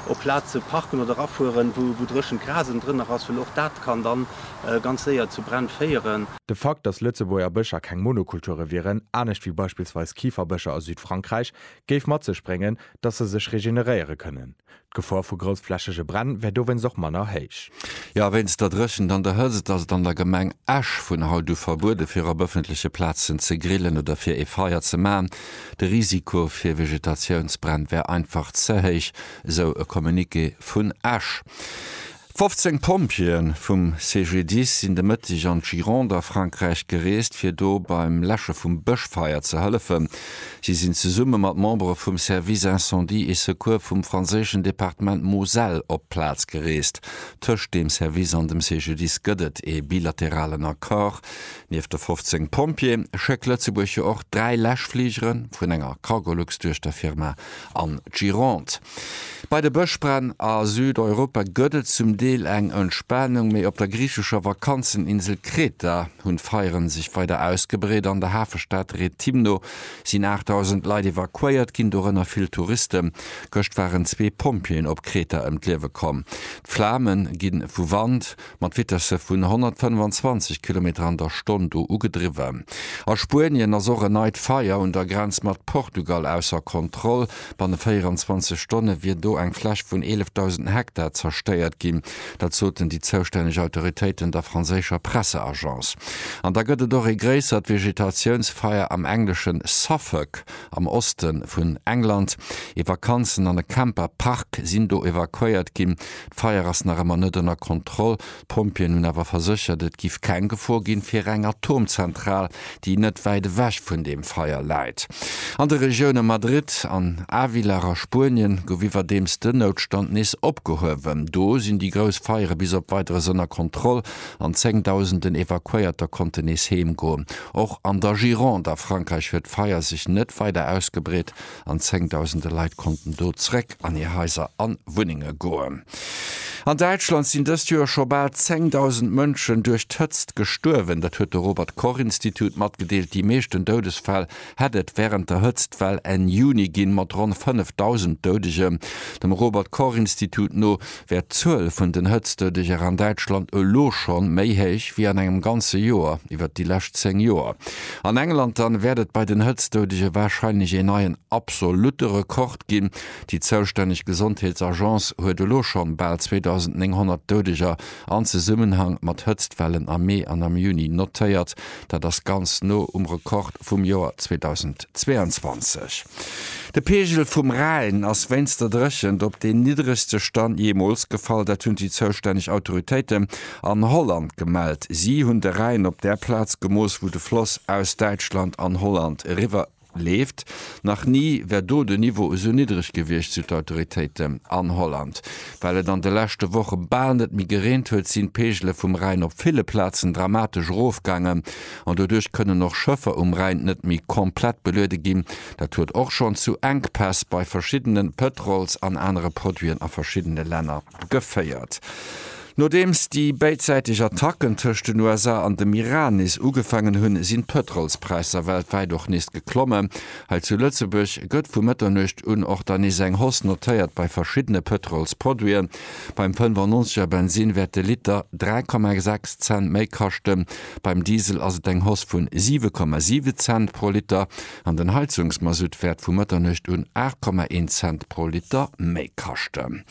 op Plaze parken oder rafueren, wou dréchent Gras ënnendrënner ass, well och dat kann dann ganz séier zu Bränn féieren. De Fakt, dass Lëtzebuerger Bëscher keng Monokulture wieren, anescht wéi beispillsweis Kiferbëscher a Südfrankräich, géif mat sech bréngen, dass se sech regeneréiere kënnen. D'Gefor vu groussflächege Bränn wär dowéinst och manner héich. Jo, wéinst der Dréchent an der Hëtzt ass et an der Gemeng Esch vun haut u verbuede fir op ëffentleche Plazen ze grillen oder fir ee Feier ze maachen. De Risiko fir Vegetatiounsbränn wär einfach ze héich, esou e Communiqué vun Esch. 15 Pompjeeë vum CGDIS sinn de Mëtteg an d'Gironde a Frankräich gereest, fir do beim Läsche vum Bëschfeier ze hëllefen. Si sinn zesumme mat Membere vum Service Incendie et Secours vum franséischen Departement Moselle op d'Plaz gereest. Tëscht deem Service an dem CGDIS gëtt et ee bilateralen Accord, Nieft de 15 Pompjeeë schéckt Lëtzebuerg jo och dräi Läschfligere vun enger Cargolux-Duechterfirma an d'Gironde. Bei de Bëschbränn a Südeuropa gëtt et zum Deel eng Entspanung, mee op der griichescher Vakanzeninsel Kreta hunn d'Feiere sech weider ausgebreet. An der Hafestad Rethymno sinn 8.000 Leit evakuéiert ginn, dorënner vill Touristen. Gëscht waren zwee Pompjeeën op Kreta ëm d'Liewe komm. D'Flame gi vu Wand, mat Vitesse vun 125 Kilometer an der Stonn do ugedriwwen. A Spuenien ass och en neit Feier un der Grenz mat Portugal ausser Kontroll. Banne 24 Stonne wier do eng Fläch vun 11.000 Hektar zerstéiert ginn. Dat soten déi zoustänneg Autoritéiten der franséischer Presseagence. An da gëtt et och ee gréissert Vegetatiounsfeier am englesche Suffolk, am Oste vun England. Ee Vakanzen an e Camper-Park sinn do evakuéiert ginn. D'Feier ass nach ëmmer net ënner Kontroll. D'Pompjeeën hunn awer verséchert, et giff keng Gefor ginn fir eng Atomzentral, déi net wäit ewech vun deem Feier läit. An de Regioune Madrid an Ávila a Spuenien gouf iwwerdeems den Noutstand nees opgehuewen. Do sinn déi grouss Feiere bis op Weideres ënner Kontroll an zéngdausenden Evakuéierter konnten nees heem goen. Och an der Gironde a Frankräich huet d'Feier sech net weider ausgebreet. an zéngdausende Leit konnten do zréck an hir Haiser an Wunnenge goen. An Däitschland sinn dëst Joer scho bal zéngdausend Mënschen duerch d'Hëtzt gestuerwen. Dat huet de Robert Koch Institut matgedeelt. Déi meeschten Doudesfäll hätt et wärend der Hëtztwell Enn Juni ginn, mat ronn fënnefdausend Doudegen. Dem Robert Koch Institut no wär d'Zuel vun den Hëtztdodeger an Däitschland elo scho méi héich wéi an engem ganze Joer iwwert déi lescht 10 Joer an England. Dann wäert et bei den Hëtztdodege warscheinlech een neien absolutte Rekord ginn. Déi zoustänneg Gesondheetsagence huet elo schonn bal 2.900 Dodeger an Zesummenhang mat Hëtztwellen am Mee an am Juni notéiert. Dat ass ganz no um Rekord vum Joer 2022. De Peegel vum Rhäin ass wéinst der Dréchent op deen niddregste Stand jeemools gefall. Dat hunn déi zoustänneg Autoritéiten an Holland gemellt. Si hunn de Rhäin op där Plaz gemooss, wou de Floss aus Däitschland an Holland eriwwer. Leeft. Nach ni wär do de Niveau esou niddreg gewiescht, sou d'Autoritéiten. An Holland, well et an de leschte Woche bal net méi gereent huet, sinn d'Peegele vum Rhäin op ville Plazen dramatesch erofgaangen an doduerch kënnen och Schëffer um Rhäin net méi komplett beluede ginn. Dat huet och schonn zu Enkpäss bei verschiddene Pëtrols an anere Produiten a verschiddene Länner geféiert. Nodeems déi béidsäiteg Attacken tëscht den USA an dem Iran nees ugefaangen hunn, sinn d'Pëtrolspräisser weltwäit och nees geklommen. Hei zu Lëtzebuerg gëtt vu Mëtternuecht un och dann nees eng Hausse notéiert bei verschiddene Pëtrolsproduiten. Beim 95 er Bensinn wäert de Liter 3,6 Cent méi kaschten. Beim Diesel ass et eng Hausse vun 7,7 Cent pro Liter. an den Heizungsmasutt wäert vu Mëtternuecht un 8,1 Cent pro Liter méi kaschten.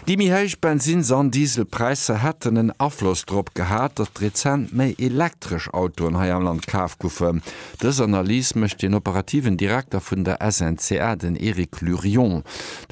Déi méi héich Bensinns an Dieselpräisser hätten en Afloss drop gehat, datt rezent méi elektresch Autoen hei am Land kaf goufen. Dës Analys mécht den operativen Direkter vun der SNCA, den Eric Lurion,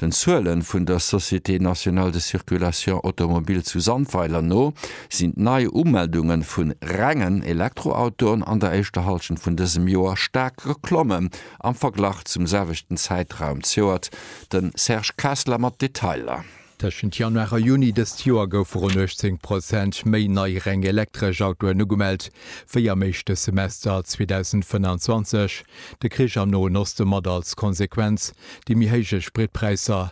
den Zuele vun der Société nationale de circulation automobile zu Sandweiler no. sinn d'Neiumeldunge vun rengen Elektroautoen an der éischter Hallschent vun dësem Joer staark geklommen am Verglach zum selwechten Zäitraum zejoert. De Serge Kessler mat Detailer. Tëschent Januar a Juni dëst Joer goufe ronn 18 Prozent méi nei reng elektresch Autoen ugemellt wéi am éischte Semester 2025. De Krich am Noen Oste mat als Konsequenz déi méi héije Spritpräisser.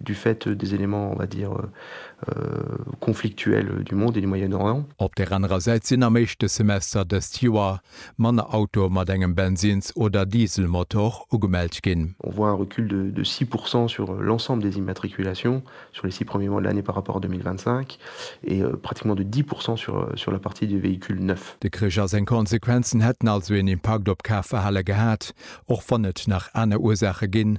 du fait des éléments, on va dire, conflictuels du monde et du Moyen-Orient. Op der anerer Säit sinn am éischte Semester dëst Joer manner Autoe mat engem Bensins oder Dieselmotor ugemellt ginn. On voit un recul de de six pour cent sur l'ensemble des immatriculations sur les six premiers mois de l'année par rapport à 2025 et pratiquement de dix pour cent sur sur la partie des véhicules neufs. De Krich a seng Konsequenzen hätten also een Impakt op d'Kafverhale gehat, och wann et nach aner Ursaache ginn,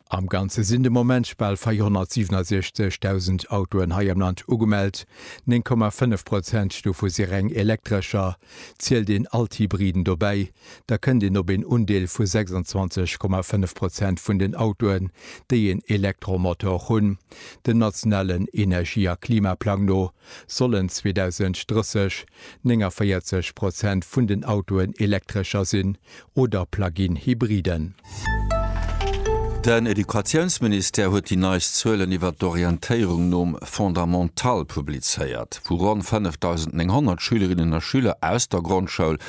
Am Ganze sinn de Moment bal 467.000 Autoen hei am Land ugemellt, 9,5 Prozent dovu si reng Elektrescher. Zielt een all d'Hybriden dobäi, da kënnt een op een Undeel vu 26,5 Prozent vun den Autoen, déi een Elektromotor hunn. Dem nationalen Energie a Klimaplang no sollen 2030 49 Prozent vun den Autoen Elektrescher sinn oder Plug-in Hybriden. Den Educatiounsministère huet déi neist Zuelen iwwer d'Orientéierung nom Fondamental publizéiert. Vu ronn 5.900 Schülerinnen a Schüler aus der Grondschoul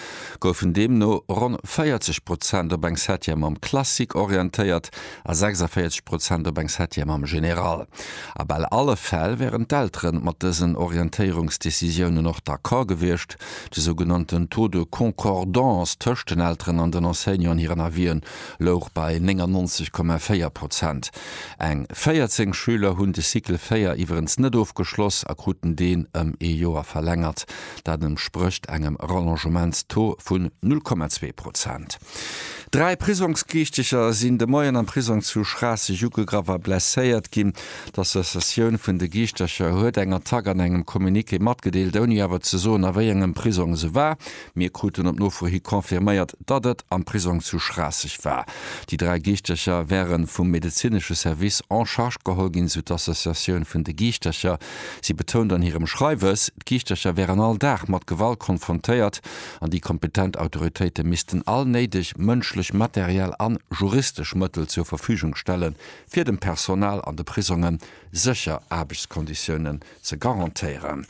goufen deemno ronn 40 Prozent op eng Septième am Classique orientéiert, a 46 Prozent op eng Septième am General. A bal alle Fäll wären d'Eltere mat dësen Orientéierungsdecisiounen och d'accord gewiescht. De sougenannten Taux de concordance tëscht den Elteren an den Enseignanten an hiren Avisen louch bei 99,4 Prozent. Eng 14 Schüler hunn de Cycle 4 iwwerens net ofgeschloss a kruten deen ëm ee Joer verlängert. Dat entsprécht engem Rallongementstaux vun 0,2 Prozent. Dräi Prisongsgeriichteger sinn de Moien am Prisong zu Schraasseg ugegraff a blesséiert ginn. D'Associatioun vun de Giischtercher huet eng Attack an engem Communiqué matgedeelt, ouni awer ze soen, a wéi engem Prisong se war. Mir kruten op Nofro hi confirméiert, datt et am Prisong zu Schraasseg war. Déi dräi Giischtercher wäre vum medezinesche Service en charge geholl ginn, sou d'Associatioun vun de Giischtercher. Si betount an hirem Schreiwes, d'Giischtercher wären all Dag mat Gewalt konfrontéiert. an déi kompetent Autoritéite missten all néideg mënschlech, materiell an juristesch Mëttel zur Verfügung stellen, fir dem Personal an de Prisonge sécher Aarbechtskonditiounen ze garantéieren.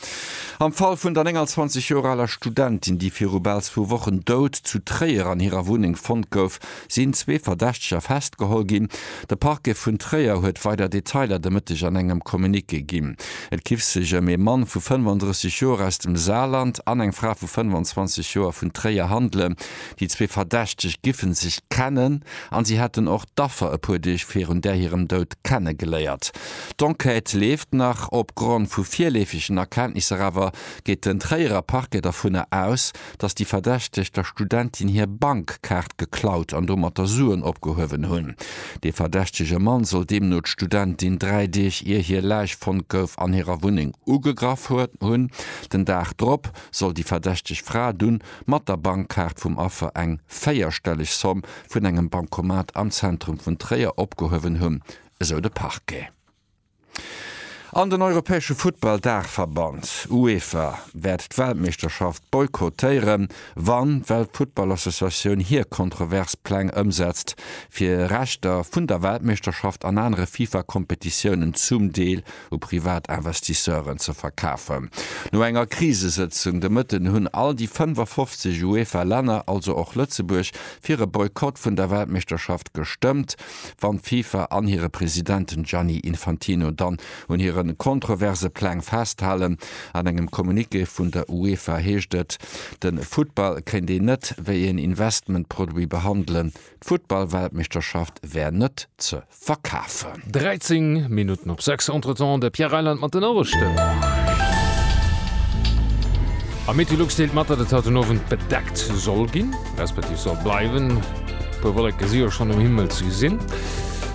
Am Fall vun der 29 Joer aler Studentin, déi viru bal zwou Wochen dout zu Tréier an hirer Wunneng fonnt gouf, sinn zwee Verdächteger festgeholl ginn. De Parquet vun Tréier huet weider Detailer de Mëtteg an engem Communiqué ginn. Et giff sech ëm ee Mann vu 35 Joer aus dem Saarland an eng Fra vu 25 Joer vun Tréier handelen. Déi zwee Verdächteg giffe sech kennen an si hätten och d'Affer e puer Deeg virun där hirem Doud kenne geléiert. D'Enquête leeft nach. Opgrond vu virleefegen Erkenntnisser awer geet den Tréierer Parquet dervunner aus, dass déi Verdächteg der Studentin hir Bankkaart geklaut an domatter Suen opgehuewen hunn. Dee verdächtege Mann soll deemno d'Studentin dräi Deeg ier hir Läich fonnt gouf an hirer Wunneng ugegraff hunn. Den Dag drop soll déi verdächteg Fra dunn mat der Bankkaart vum Affer eng véierstelleg Somm vun engem Bankomat am Zentrum vun Tréier opgehuewen hunn, esou de Parquet. An den europäesche Futtball-Daachverband UEFA wäert d'Weltmeeschterschaft boykottéieren, wann d'Weltfuttballassociatioun hir kontrovers Pläng ëmsetzt, fir Rechter vun der Weltmeeschterschaft an anere FIFA-Kompetitiounen zum Deel u privat Investisseuren ze verkafen. No enger Krisesëtzung de Mëtten hunn all déi 55 UEFA-Länner, also och Lëtzebuerg, fir e Boykott vun der Weltmeeschterschaft gestëmmt. wann d'FIFA an hire President Gianni Infantino dann un hire kontroverse Pläng festhalen. An engem Communiqué vun der UEFA heescht et, de Futtball kéint een net wéi een Investmentproduit behandelen, d'Futtballweltmeeschterschaft wär net ze verkafen. 13 Minutten op 6, Entretemps de Pierre Reyland mat den Noriichten. Am Meteolux deelt mat, datt et haut den Owend bedeckt soll ginn. respektiv soll bleiwen. E puer Wolleke si jo schonn um Himmel ze gesinn.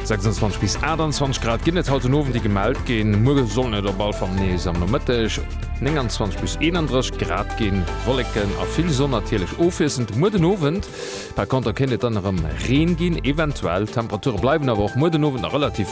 26 bis 28 Grad ginn et haut den Owend, déi gemellt ginn. Muer sollen et op all Fall nees am Nomëtteg 29 bis 31 Grad ginn. Wolleken a vill Sonn natierlech ofwiesselnd muer den Owend. Par Konter kéint et dann erëm Reen ginn, eventuell. D'Temperature bleiwen awer och muer den Owend nach relativ.